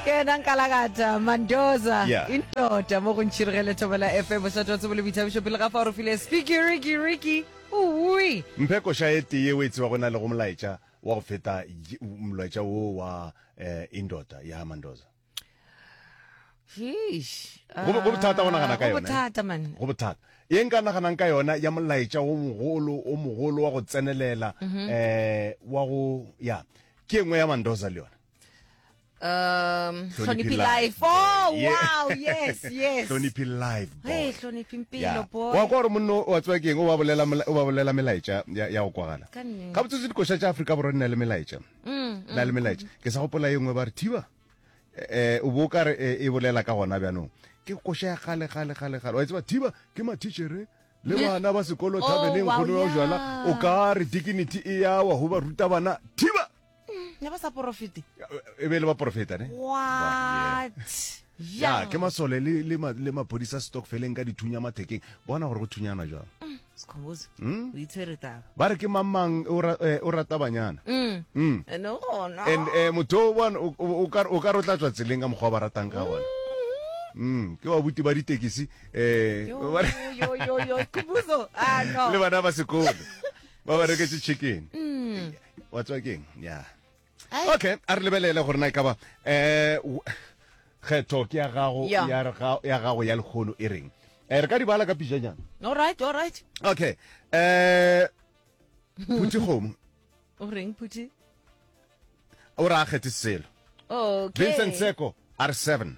ke yena nkalakata mandoza yeah. indoda mo go ntšhirigele thobela fm bošate wa tsebo le boithabišo pele ga fa o re file spikirikiriki ui mphe koša e tee o e tseba go na le go molaetša wa go feta molaetša wo wa eh, indoda ya mandoza go bothata go nagana ka ah, yone go bothata ye nka naganang ka yona ya molaetša o mogolo o mogolo wa go tsenelela um wa go ya ke engwe ya mandoza le yone um hloniphi life oh wow yes yes hloniphi life hey hloniphi mpilo boy wa gore monno wa tswa keng o ba bolela o ba bolela melaetša ya go kwagala ga botsotsi dikoša tša Afrika borwa nna le melaetša mm, na le mm, melaetša mm. ke sa gopola ye nngwe ba re thiba eh o bo ka re eh, e bolela ka gona bjanong ke koša ya gale gale gale gale wa tseba thiba ke matitšhere le bana ba sekolo oh, thabeleng kgono ya jala o ka re dignity e yawa go ba ruta bana thiba ne ba sa porofete e be le ba porofeta ne what ya ke masole le le ma- le maphodisa stockfeleng ka dithunya mathekeng bona gore go thunyanwa jang sekhombozo Hmm? o itshwere taba ba re ke mamang o ra- eh, o rata banyana Mm. Mm. Eh, no gona and eh, motho o bona o- o o ka o ka re o tla tswa tseleng ka mokgwa o ba ratang ka gona Mm, ke babuti ba ditekisi um Yo, yo, yo, yo, Khumbuzo. Ah, no. le bana ba sekolo ba ba reketse chicken mm. wa tswa keng ya okay a re lebelele gore na e ka ba um kgetho ke ya gago ya gago ya lekgono e reng um re ka di bala ka pijanyana allright allright okay um phuthi kgomo o reng phuthi o re a kgethe selo okay. vincent seko r seven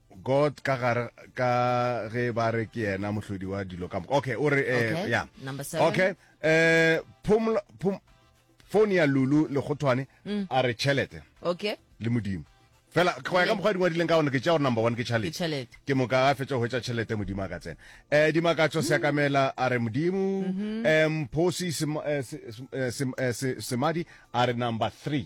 God ka gare ka ge ba re ke yena mohlodi wa dilo ka moka okay o re eh, Okay, yeah. number seven. okay eh phumla phum phone ya lulu legotwane Mm. a re chelete okay le modimo fela go ya ka mokgwa di ngwadileng ka gone ke tša gore number one ke chalete chalete ke moka a fetša go hwetša tšhelete modimo a ka tsena um dimakatso seakamela a re modimo um phosi Sem- eh, Se- Sem- eh, Sem- eh, Se- semadi a re number three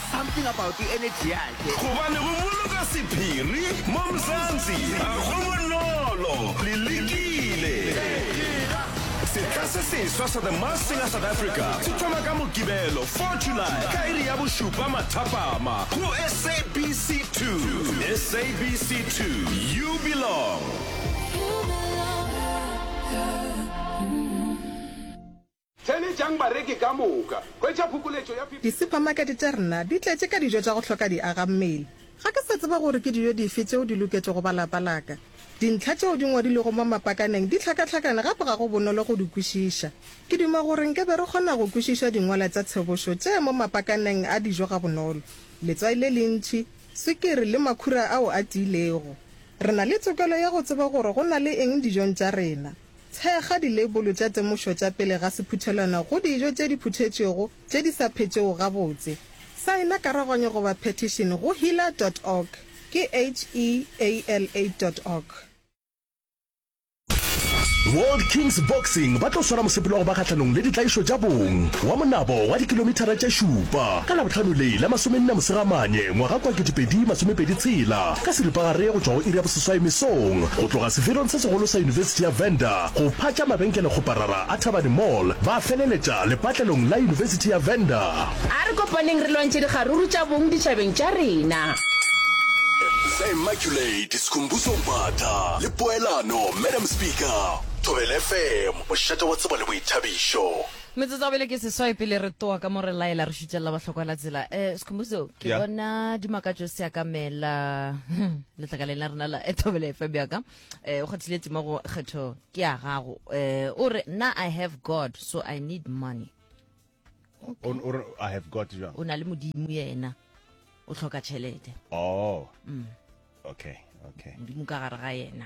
Something about the energy yakhe. Gobane go boloka sephiri mo Mzansi ga go bonolo. Le lekile. Setla se seswa sa The Masked Singer South Africa se thoma ka Mokibelo 4 July ka iri ya bošupa mathapama go SABC 2. SABC 2, you belong. Theeletšang bareki ka moka. Hwetša phokoletšo ya 50. Disupamakete tša rena di tletše ka dijo tša go hloka diagammele. Ga ke sa tseba gore ke dijo dife tšeo di loketšego ba lapa la ka. Dintlha tšeo di ngwadilwego mo mapakaneng di hlakahlakane gape ga go bonolo go di kwešiša. Ke duma gore nke be re kgona go kwešiša dingwala tša tshobošo tše mo mapakaneng a dijo gabonolo, letswai le lentši, swikiri le makhura ao a tiilego. Re na le tokelo ya go tseba gore go na le eng dijong tša rena. Thekga dileibolo tša temošo tša pele ga sephuthelwana go dijo tše di phuthetšwego tše di sa phetšego gabotse. Saena karaganyo goba petition go heala dot org, ke H-E-A-L-A dot org. World Kings Boxing ba tlo swara mosepelo wa go ba kgahlanong le ditlaišo tša bong wa monabo wa dikilomithara tše šupa ka Labohlano le la masomenne Mosegamane ngwaga kwa 2026. Ka seripagare go tšwa go iri ya boseswai mesong, go tloga sefelong se segolo sa Yunibesithi ya Venda go phatša mabenkelekgoparara a Thabane Mall, ba feleletša lepatlelong la Yunibesithi ya Venda. A re kopaneng re lwantšhe dikgaruru tša bong ditšhabeng tša rena. Sa Immaculate, Skhumbuzo Mbatha le Poelano, Madam Speaker, Thobela FM, mošate wa tsebo le boithabišo. Metsotso ya bele ke seswai pele re toa ka mo re laela re šutšelela bahlokwa la tsela. Eh Skhumbuzo ke Yeah. bona dimakatšo se akamela letlakaleng la rena la Ethobele FM ya ka. Eh o kgathile tima go kgetho ke ya gago. Eh o re na I have God so I need money. O o re, I have got jwang. O na le modimo yena. O tlhoka tšhelete. Oh. Okay, okay. Modimo ka gare ga yena.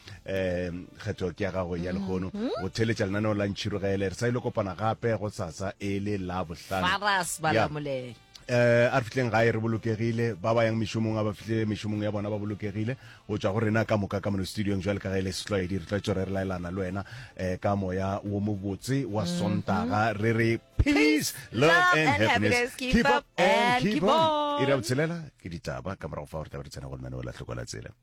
um kgetho ke ya gago ya lehono go theletša lenaneo la ntšhirogele re sa ile kopana gape go tsatsa e le la bohlano faras Yeah. balamolele eh a re fitleng gae re bolokegile ba ba yang mešomong a ba fihle mešomong ya bona ba bolokegile go tšwa go rena ka moka ka mono studiong jwale ka ge e le setlwaedi re tlwaetso re re laelana le wena um ka moya wo mobotse wa sontaga re re peace love and happiness keep up and keep on ira botshelela ke ditaba ka morago fa gore taba re tsena go lenaneo la tlhokola tsela